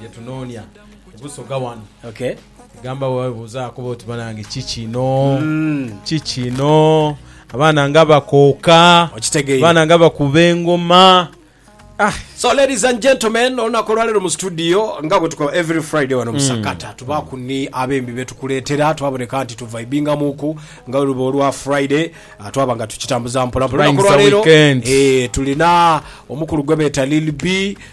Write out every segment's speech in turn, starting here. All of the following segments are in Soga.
bye tunoonia ku Busoga wano. Okay. Gamba bwe webuuza akuba oti banange ki kino? Ki kino? Abaana nga bakooka, Okitegeire. abaana nga bakuba engoma. So ladies and gentlemen, olunaku olwalero mu studio nga bwe tukola every Friday wano musakata tubaku ni abembi betukuletera twaboneka nti tuvibingamuku nga luba olwa Friday ah, twaba nga tukitambuza mpola mpola. Flying Olunaku olwalero, za weekend. eh, tulina omukulu gwe beta Lil B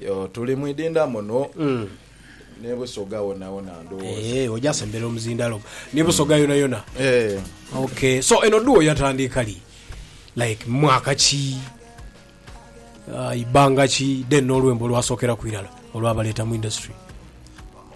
Yoo tuli mu idindha muno ne Busoga wonawona ndhowooza. Eeh oja sembera omuzindalo ne Busoga yonayona. Eeh. Ok so eno duo yatandiika li? Like mwaka ki, ibanga ki then nolwembo olwasokeraku irala olwabaleeta mu industry?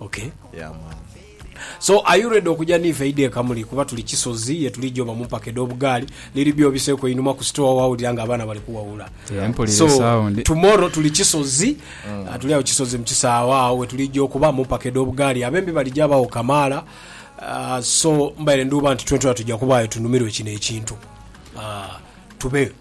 Ok Yeah man. So are you ready okuja niife eidha e Kamuli kuba tuli Kisozi yetuligya oba mumpaka edhobugaali liri byo obiseeku einhuma ku store wawulira nga abaana bali kuwawula Yeah, mpulira So esawundi. tomorrow tuli Kisozi ah, tuli agho Kisozi mu kisaawe agho wetuligya okuba mumpaka edhobugaali abembi baligya bagho kamaala Ah, so mbaire nduuba nti twentwena tugya kubaayo tunumirwe kino ekintu Ah, tubeeyo.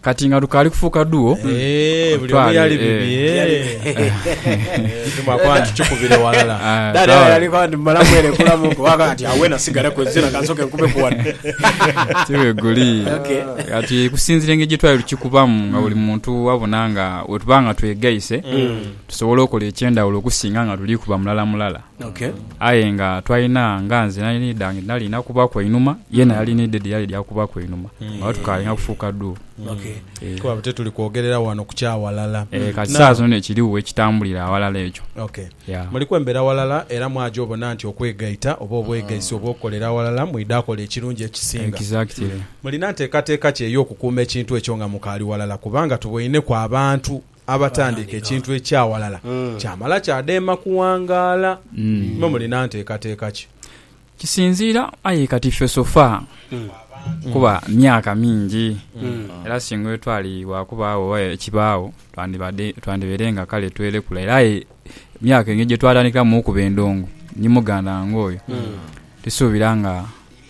Kati nga lukaali kufuuka duo, Eeeh, buli omu yali bibi, eeeh. Ndi mwakoba ntukikubire walala. Ah, Dada sawa. yali kwa ndi mala mwerekula muko waka ati awe nasigale ku zina kansoke nkube ku wano. tibweguli Okay. kati kusinzira engeri gyetwali tukikubamu nga buli muntu wabona nga wetuba nga twegaise tusobole okola ekyendawulo okusinga nga tuli kuba mulala mulala Aye nga twalina, nga nze nali nidha nge nali na kubaku einhuma, yena yali needed yali dha kubaku einhuma. Nga tukalinha kufuuka duu. Eh, Kuba te tuli kwogerera wano ku kya walala. eh, kati Now- saa zino ekiriwo ekitambulira awalala ekyo. Okay. Yeah. Muli kwembera walala era mwaja obona nti okwegaita oba obwegaisi obw'okukolera awalala mwidha akola ekirungi ekisinga. Exactly. Mulina nteekateeka ki ey'okukuuma ekintu ekyo nga mukaali walala kubanga tuboineku abantu abatandiika ekintu ekya walala kyamala kyadheema kuwangaala. Mwe mulina nteekateeka ki? Kisinziira aye kati ffe so far kuba myaka mingi era singa etwali waakubaagho oba ekibaagho twandibadde twandibaire nga kale twelekula era aye emyaka engeri gye twatandikamu okuba endongo ni muganda wange oyo tusuubira nga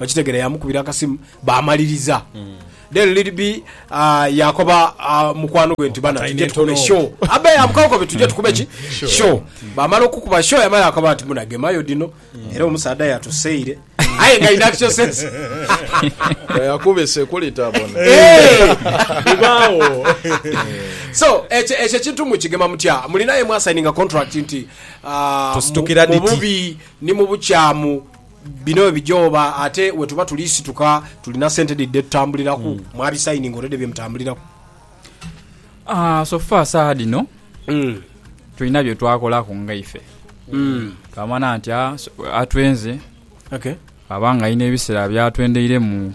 okitegera yamukubira akasimu bamaliriza then lady b ah, yakoba ah, mukwano gwe nti bana Time tujje tukube entono. show abe yamukakobe tujje tukube ki show bamala okukuba show yamala yakoba nti muna gemayo dino era omusaadha yatuseire aye nga in actual sense yakuba esekuli tabona Eh! bibaawo so ekyo ekyo ekintu mukigema mutya mulinaye mwasayininga contract nti ah, Tusitukira mu- mu dhiti. bubi ni mu bukyamu Bino bwe bija oba ate we tuba tuli situka tulina sente dhi dhe tutambuliraku mwabisayininga already bye mutambuliraku? Ah, so far saagha dhino Mm. tulina bye twakolaku nga ife twamanya nti ah, so- atwenze Okay. aba nga alina ebiseera byatwendeiremu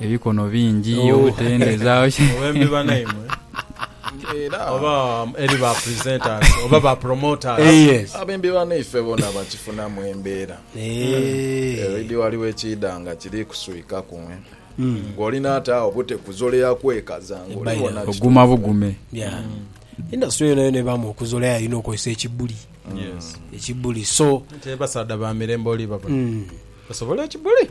Ebikono bingi, obutende za. Owembi banaimwe oba eri ba presenters oba ba promoters. Abembi banaife bona bakifunamu embeera. Already waliwo ekiidha nga kiri kuswikaku. Nga olina ate agho bute kuzolea kwekaza nga oli wona. Oguma bugume. Industry yonayona ebaamu okuzolea erina okozesa ekibuli. Ekibuli so. Abasaadha ba mirembe oli babona basobola ekibuli.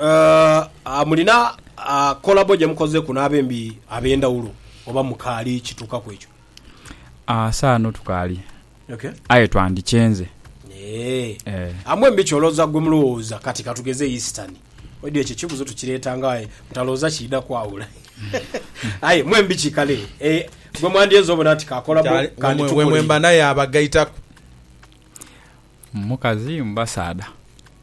Aah mulina kolabo gyemukozeku n'abembi ab'endhawulo oba mukaali kituuka ku ekyo? Aah saano tukaali aye twandikyenze. Eeh mwembi ky'olooza gwe mulowooza kati katugeze Eastern Audio ekyo ekibuuzo tukireeta nga aye butalowooza kiidha kwawula aye mwembi ki kale gwe mwandyenze obona nti ka kolabo kandi tukoleire. Wemwemba naye abagaitaku? Mukazi mu basaadha?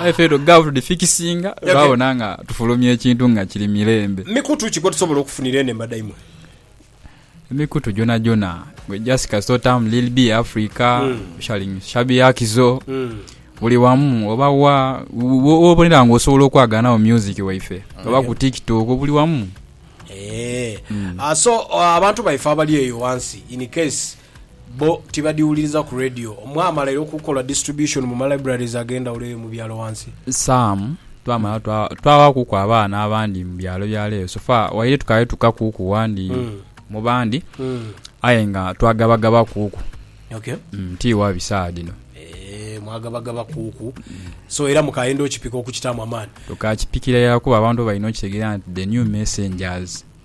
Aye ffe edho gaavu tudhifikisinga Okay. twabona nga tufulumya ekintu nga kiri mirembe. Mikutu ki kwetusobola okufunira eno embada imwe? Emikutu gyonhagyonha gwe just kasita otaamu Lil Be Africa, Mm. Sharing Shabby Akizo, Mm. buli wamu oba wa wo- wo- wobonera nga osobola okwaganagho music waife oba ku tiktok buli wamu. Eh. Ah, so ah, abantu baife abali eyo wansi in case Bbo tibadhiwuliriza ku radio. Mwamala era okukola distribution mu ma libraries ag'endhawulo eyo mu byalo wansi? Sam, Twamala twawakuku abaana abandi mu byalo byalo eyo. So far waire tukaali tukakuku wandi mu bandi aye nga twagabagabakuku ti wa bi saagha dhino. Eeh, mwagabagabakuku. So era mukaayenda okipika okukitaamu amaani? Tukaakipikira irala kuba abantu balina okitegeera nti the new messengers.